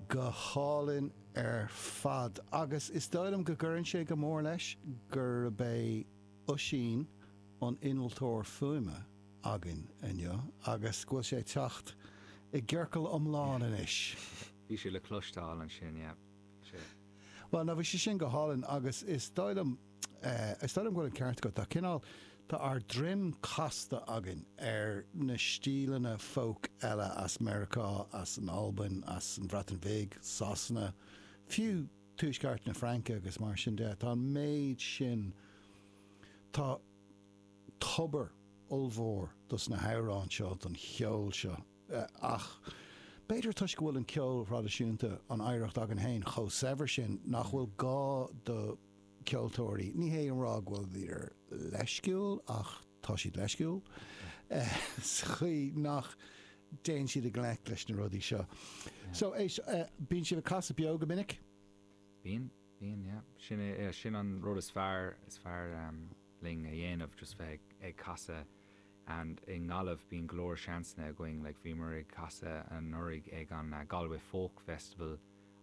go hálainn ar fad agus is dóigh liom go gcuireann sé go mór leis gurb é Oisín an innealtóir fuaime againn inniu agus go bhfuil sé ag teacht i gciorcal iomlán anois. Bhí sé le cloisteáil ansin, yeah. Bhí sé. Bhuel, no, bhí sé sin go hálainn agus is dóigh liom. Is dóigh liom go bhfuil an ceart agat. Tá cineál, tá ár droim casta againn ar na stíleanna folk eile as Meiriceá, as an Albain, as an Bhreatain Bhig, Sasana, fiú tuaisceart na Fraince agus mar sin de. Tá an méid sin, tá tobar ollmhór dos na hamhráin seo, don cheol seo ach b'fhéidir toisc go bhfuil an ceol thraidisiúnta, an oidhreacht againn féin chomh saibhir sin nach bhfuil gá do cheoltóirí, ní hé a rá go bhfuilir leisciúil ach tá siad leisciúil sa chaoi nach dtéann siad i ngleic leis na rudaí seo. So, éist, bíonn sibh ag casadh beo go minic? Bíonn. Bíonn, yeah. Sin é, yeah, sin an rud is fearr, is fearr linn a dhéanamh, just bheith ag casadh and i nGaillimh bíonn go leor seansanna againn, like bhíomar ag casadh anuraidh ag an Galway Folk Festival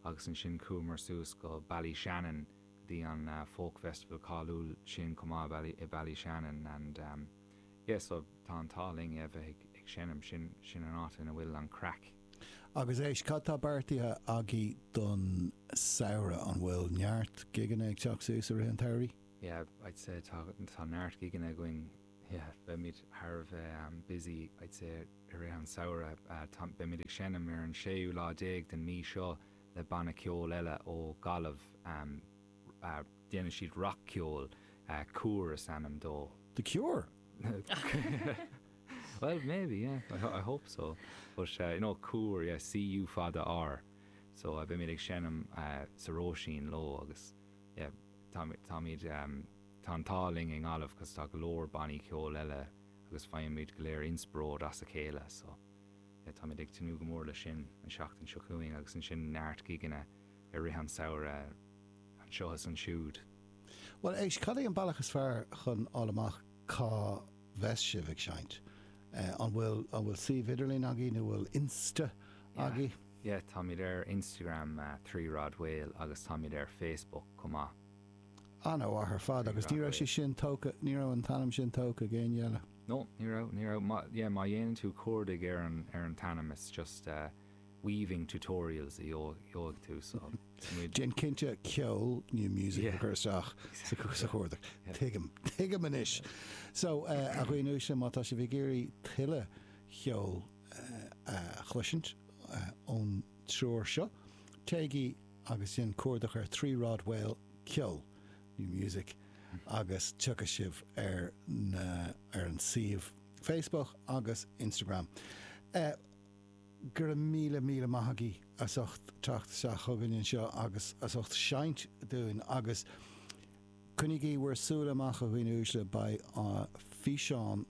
agus ansin chuamar suas go Ballyshannon go dtí an folk festival cáiliúil sin chomh maith i Ballyshannon and yeah so tá an t-ádh linn, yeah, bheith ag seinm, sin, sin an áit ina bhfuil an craic. Agus éist, cad tá beartaithe agaibh don samhradh? An bhfuil neart gigeanna ag teacht suas i rith an tsamhraidh? Yeah, I'd say tá, tá neart gigeanna againn. Yeah, beimid thar a bheith busy I'd say i rith an samhradh. Tá, beimid ag seinm ar an séú lá déag den mhí seo le banna ceoil eile ó Ghaillimh. Déanann siad rac-cheol. Cúr is ainm dóibh. The Cure? Bhuel, maybe, yeah. I hope so. But no, Cúr, yeah, C-U fada R. So beimid ag seinm sa Róisín leo agus yeah, táimid, tá an t-ádh linn i nGaillimh because tá go leor bannaí ceoil eile agus faighimid go léir inspioróid as a chéile. So yeah, táimid ag tnúth go mór leis sin an seachtain seo chugainn agus ansin neart gigeanna. i rith an samhradh anseo is ansiúd. Bhuel, éist, cad é an bealach is fearr chun a fháil amach cá bheas sibh ag seinnt? An bhfuil suíomh idirlín agaí nó bhfuil Insta agaí? Yeah, táimid ar Instagram, Three Rod Whale, agus táimid ar Facebook chomh maith. An-mhaith ar fad, agus ní raibh sé sin tógtha, ní raibh an t-ainm sin tógtha ag éinne eile? No, ní raibh, ní raibh, yeah, má dhéanann tú cuardaigh ar an t-ainm, it's just. weaving tutorials a gheobhaidh tú sa mód. Déan cinnte ceol new music a chur isteach sa chuardach. Tuigim. Tuigim anois. So, a dhaoine uaisle, má tá sibh ag iarraidh tuilleadh cheoil a chloisint ón triúr seo, téigí agus déan cuardach ar Three Rod Wale ceol, new music, agus tiocfaidh sibh ar na, ar an suíomh Facebook agus Instagram. Go raibh míle míle maith agaibh as ucht teacht isteach chugainn anseo agus as ucht seinnt dúinn agus coinnígí bhur súile amach a dhaoine uaisle, beidh físeán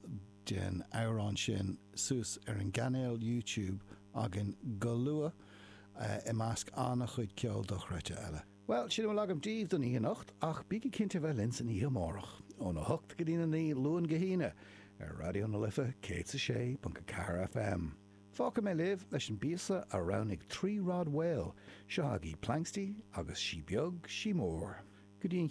den amhrán sin suas ar an gcainéal YouTube againn go luath i measc an-chuid ceol dochreidte eile. Bhuel, sin a bhfuil agam daoibh don oíche anocht, ach bígí cinnte bheith linn san oíche amárach, óna hocht go dtína naoi, Luan go hAoine, ar Raidió na Life 106.4 FM. Fágfaidh mé libh leis an bpíosa a roghnaigh Three Rod Wale, seo agaibh Planxty agus Sí Beag, Sí Mór. Go dtí an.